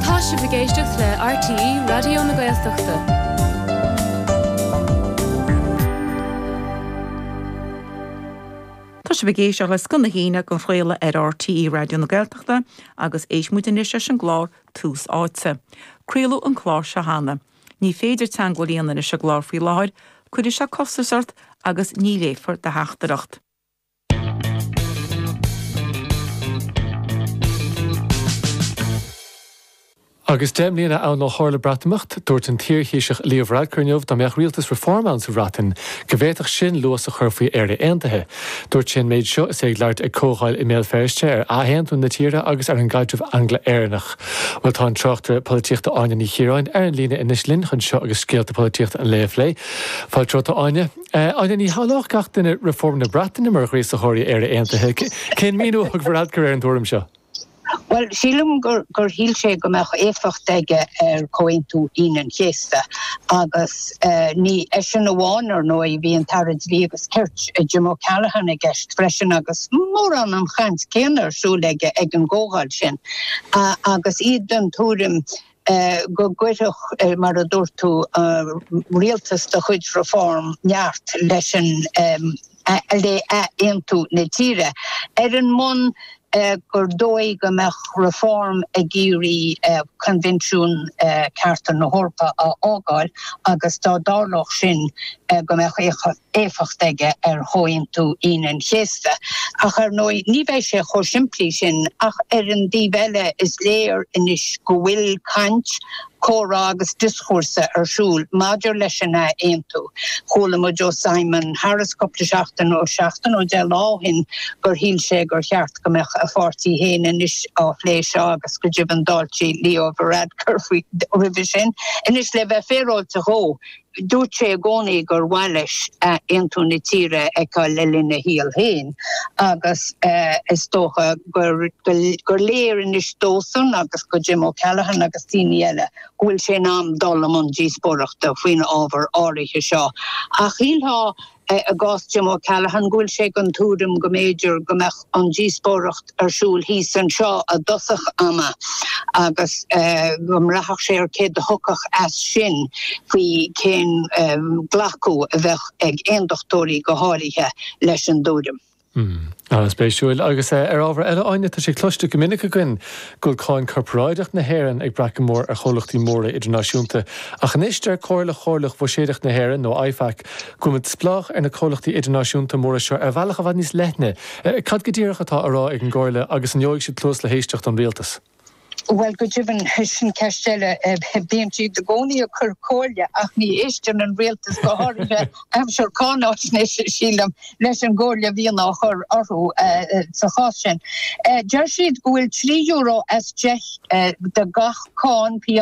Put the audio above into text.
Tá sibh ag éisteacht le RTÉ Raidió na Gaeltachta. Tá sibh ag éisteacht le Scoth na hAoine á chraoladh ar RTÉ Raidió na Gaeltachta agus éistfidh muid anois leis an gclár Tús Áite. Craoladh an clár seo cheana. Ní féidir teagmháil a dhéanamh leis an gclár faoi láthair, cuirfidh sé costas ort agus ní léifear do theachtaireacht. Agus deich mbliana ann ó tharla Breatimeacht, dúirt an t-iarThaoiseach Leo Varadkar inniu dá mbeadh rialtas Reform ann sa Bhreatain go bhféadfadh sin luas a chur faoi Éire Aontaithe. Dúirt sé an méid seo is é ag labhairt ag comhdháil i mBéal Feirste ar athaontú na tíre agus ar an gcaidreamh Angla-Éireannach. Bhuel, tá an tráchtaire polaitíochta Áine Ní Chiaráin ar an líne anois linn chun seo agus scéalta polaitíochta an lae a phlé. Fáilte romhat, a Áine. A Áine, ní shílfeadh gach duine Reform na Breataine mar ghríosaitheoirí Éire Aontaithe. Cén míniú a thug Varadkar ar an tuairim seo? Bhuel, sílim gur shíl sé go mbeadh éifeacht aige ar Chomhaontú Aoine an Chéasta agus ní eisean amháin ar ndóigh, bhí an tAire Dlí agus Cirt, Jim O'Callaghan i gceist freisin agus mórán an chaint céanna ar siúl aige ag an gcomhdháil sin agus iad den tuairim go gcuirfeadh, mar a dúirt tú, rialtas de chuid Reform neart leis an, le hathaontú na tíre, ar an mbonn gur dóigh go mbeadh Reform ag iarraidh Coinbhinsiún Cearta na hEorpa a fhágáil agus dá dtarlódh sin go mbeadh éifeacht éifeacht aige ar Chomhaontú Aoine an Chéasta, ach ar ndóigh ní bheidh sé chomh simplí sin, ach ar an taobh eile is léir anois go bhfuil caint, comhrá agus dioschúrsa ar siúl maidir leis an ath-aontú. Chuala muid ó Simon Harris cúpla seachtain, nó seachtain nó deich lá ó shin, gur shíl sé gur cheart go mbeadh a pháirtí féin anois á phlé seo agus go deimhin d'fháiltigh Leo Varadkar roimhe sin. Anois le bheith féaráilte dhó, Dúirt sé i gcónaí gur mhaith leis aontú na tíre a fheiceáil le linn a shaoil féin agus is dócha gur léir anois dósan agus do Jim O'Callaghan agus daoine eile go bhfuil sé in am dul i mbun díospóireachta faoin ábhar áirithe seo. Ach shílfeá i gcás Jim O'Callaghan, go bhfuil sé den tuairim go mb'fhéidir go mbeadh an díospóireacht ar siúl thíos anseo i dtosach ama agus go mbraithfeadh sé ar céard a thiocfadh as sin faoi cén glacadh a bheadh ag aondachtóirí go háirithe leis an tuairim Hmm. An-spéisiúil. Agus ar ábhar eile, Áine, tá sé cloiste go minic againn go bhfuil cáin corparáideach na hÉireann ag brath go mór ar chomhlachtaí móra idirnáisiúnta, ach anois deir Comhairle Chomhairleach Bhuiséadacht na hÉireann, nó IFAC, go bhfuil muid spleách ar na comhlachtaí idirnáisiúnta móra seo ar bhealach i bhfad níos leithne. Cad go díreach atá á rá ag an gComhairle agus an bhfaighidh siad cluas le héisteacht ón Rialtas? Bhuel, go deimhin, sin ceist eile. Bíonn siad i gcónaí ag cur comhairle ach ní éisteann an rialtas, go háirithe aimsir cáináisnéis, sílim, leis an gcomhairle a bhíonn á chur orthu sa chás sin. Deir siad go bhfuil trí euro as gach deich de gach cáin, P.